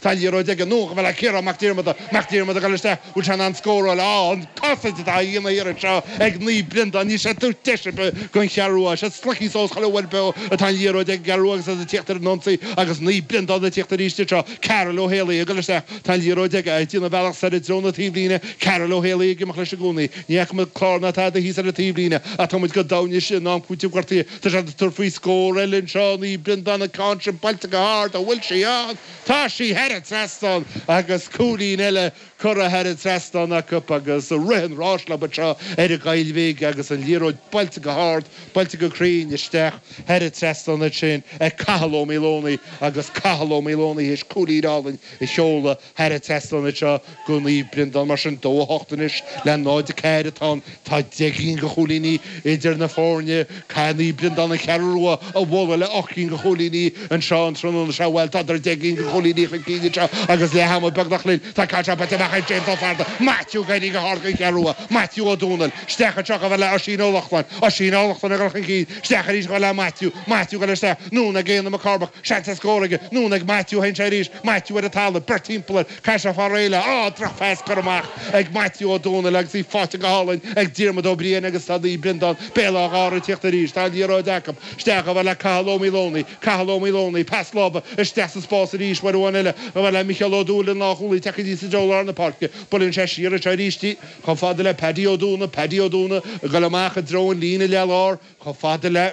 Tá liathróid aige anonn chomh fada le Ciarán Mac Diarmada Mac Diarmada ag dul isteach bhfuil sé in ann scóráil? Á, an chosaint atá á dhéanamh iarraidh seo ag Naomh Breandán níl siad ag tabhairt deis ar bith gon Cheathrú Rua Is iad slogtha suas chuile uair beo atá an liathróid ag an gCeathrú Rua agus iad ag tíocht ar an ionsaí agus Naomh Breandán ag tíocht arís anseo Karl Ó Héalaí ag dul isteach tá an liathróid aige ag déanamh a bhealach soir i dtreo na taobhlíne Karl Ó Héalaí ag imeacht leis i gcónaí ní fhaca muid clár ná tada thíos ar an taobhlíne ach tá muid go domhain anois in am cúitimh gortaithe tá siad ag tabhairt faoi scór eile anseo Naomh Breandán an ceann sin buailte go hard an bhfuil sí ann? Tá sí thar an trasnán agus cúilín eile curtha thar an trasnán acu agus rith an ráis leob anseo ar an gCoill Bhig agus an liathróid buailte go hard, buailte go cruinn isteach thar an trasnán ansin ag Cathal Ó Maoldomhnaigh agus Cathal Ó Maoldomhnaigh théis cúilín álainn a sheoladh thar an trasnán anseo. Go Naomh Breandán mar sin 2-8 anois le 0-4 atá ann tá deich gcinn go chúilíní idir na foirne. Caithfidh Naomh Breandán an Cheathrú Rua a bhualadh le 8 gcinn go chúilíní anseo an tráthnóna seo. Bhuel tádar deich gcinn go chúilíní chun cinn anseo agus leath ama beagnach linn tá an ceann seo buailte amach ag James Ó Fátharta, Maitiú ag éirí go hard gon Cheathrú Rua, Maitiú Ó Domhnaill isteach anseo chomh fada le Oisín Ó Lochlainn, Oisín Ó Lochlainn ag dul chun cinn isteach arís chomh fada le Maitiú, Maitiú ag dul isteach, anonn ag Éanna Mac Cormaic, seans ar scór aige, anonn ag Maitiú, théann sé arís, Maitiú ar an talamh, beirt thimpeall air, Pas ag fear eile, Á! Drochphas curtha amach ag Maitiú Ó Domhnaill agus í faighte go hálainn ag Diarmuid Ó Briain agus tá Naomh Breandán, Béal Átha Ghártha ag tíocht arís. Tá an liathróid acu. Isteach chomh fada le Cathal Ó Maoldomhnaigh. Cathal Ó Maoldomhnaigh, pas láimhe isteach sa spás arís. Uair amháin eile chomh fada le Micheál Ó Dúill, an lánchúlaí tagtha aníos i dtreo lár na páirce. Buaileann sé siar anseo arís. Chomh fada le Paddy Ó Dúnaigh. Paddy Ó Dúnaigh ag goil amach i dtreo an líne leath-lár. Chomh fada le.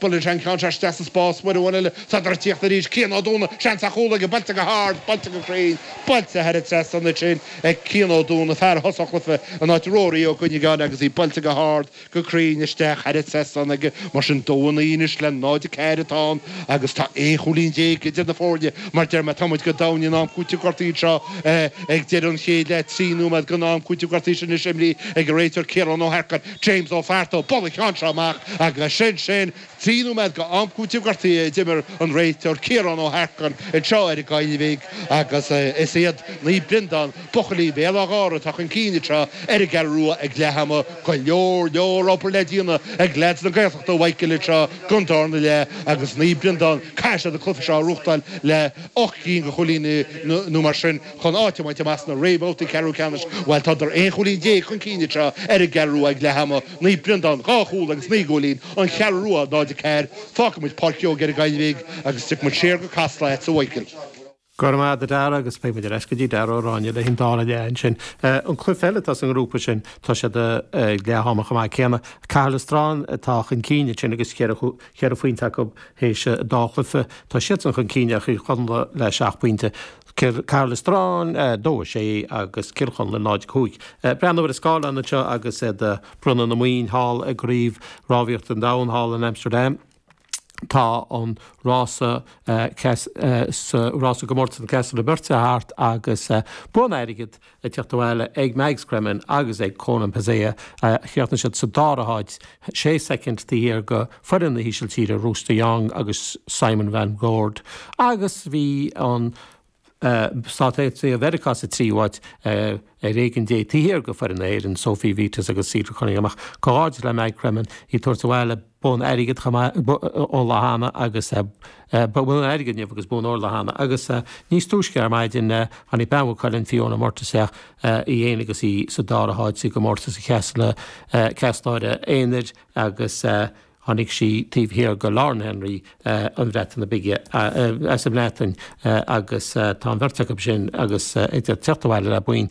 Buaileann sé an ceann seo isteach sa spás. Uair amháin eile. Tádar ag tíocht arís. Cian Ó Dúnaigh. Seans ar chúl aige. Buailte go hard. Buailte go cruinn. Buailte thar an trasnán ansin ag Cian Ó Dúnaigh, fear a thosaigh an cluife, in áit Rory Ó Cuinneagáin agus í buailte go hard, go cruinn isteach thar an trasnán aige. Mar sin dó a naoi anois le 0, 4 atá ann agus tá 11 chúilín idir na foirne. Mar deir mé, tá muid go domhain in am cúitimh gortaithe anseo ag deireadh an chéid leath. Trí nóiméad gon am cúitimh gortaithe sin anois imrithe ag an réiteoir Ciarán Ó hEarcáin. James Ó Fátharta, ag bualadh an cheann seo amach agus sin sin. Trí nóiméad go am cúitimh gortaithe a d'imir an réiteoir Ciarán Ó hEarcáin anseo ar an gCoill Bhig agus is iad Naomh Breandán, buachaillí Bhéal Átha Ghártha atá chun cinn anseo ar an gCeathrú Rua ag leath ama. Go leor leor obair le déanamh ag leaids na Gaeltachta a Mhichael anseo gon darna leath agus Naomh Breandán caithfidh siad an cluife seo a bhuachtáil le 8 gcinn go chúilíní nó mar sin. chun áit a bhaint amach sna réamhbhabhtaí ceathrú ceannais. Bhuel, tádar 11 chúilín chun cinn anseo ar an gCeathrú Rua ag leath ama, Naomh Breandán, 2 chúl agus 9 gcúilín, An Cheathrú Rua 0 4. Fágfaimid Páirc Keogh ar an gCoill Bhig agus tiocfaimid siar go Casla agatsa a Mhichael. Go raibh maith agat a Dharragh agus beidh muid ar ais go dtí Darragh Ó Ráinne leis an dara leath ansin. An cluife eile atá sa ngrúpa sin tá siad ag leath ama chomh maith céanna. Cathair Loistreáin atá chun cinn ansin agus cheithre phointe acu théis an dá chluife. Tá siadsan chun cinn ar Chill Chonla le seacht bpointe. Cathair Loistreáin 2, 6 agus Cill Chonla 0, 5. Breathnaigh ar an scáileán anseo agus iad ag bronnadh na mboinn thall i gCraobh Rámhaíochta an Domhain thall in Amsterdam. Tá an rása sa rása gcomórtas na gcéaslóirí beirte thart agus bonn airgid ag teacht abhaile ag Mags Cremen agus ag Konan Pazzaia chríochnaigh siad sa dara háit, sé soicind taobh thiar de foireann na hÍsiltíre Roos de Jong agus Simon van Dorp, agus bhí an Stáit Aontaithe Mheiriceá sa tríú háit ar éigean Dé taobh thiar de foireann na hÉireann Sophie Vitas agus Cedar Cunningham ach comhghairdeas le Mags Cremen í ag tabhairt abhaile bonn airgid chomh maith ó lá cheana agus bonn airgid inniu agus bonn óir lá cheana agus níos túisce ar maidin tháinig bean Mhaigh Cuilinn, Fiona Murtagh isteach, í fhéin agus í sa dara háit sa gcomórtas céaslóirí aonair agus tháinig sí taobh thiar de Lauren Henry na Breataine Bige as an mBreatain agus tá an bheirt acu sin agus ag teacht abhaile le boinn.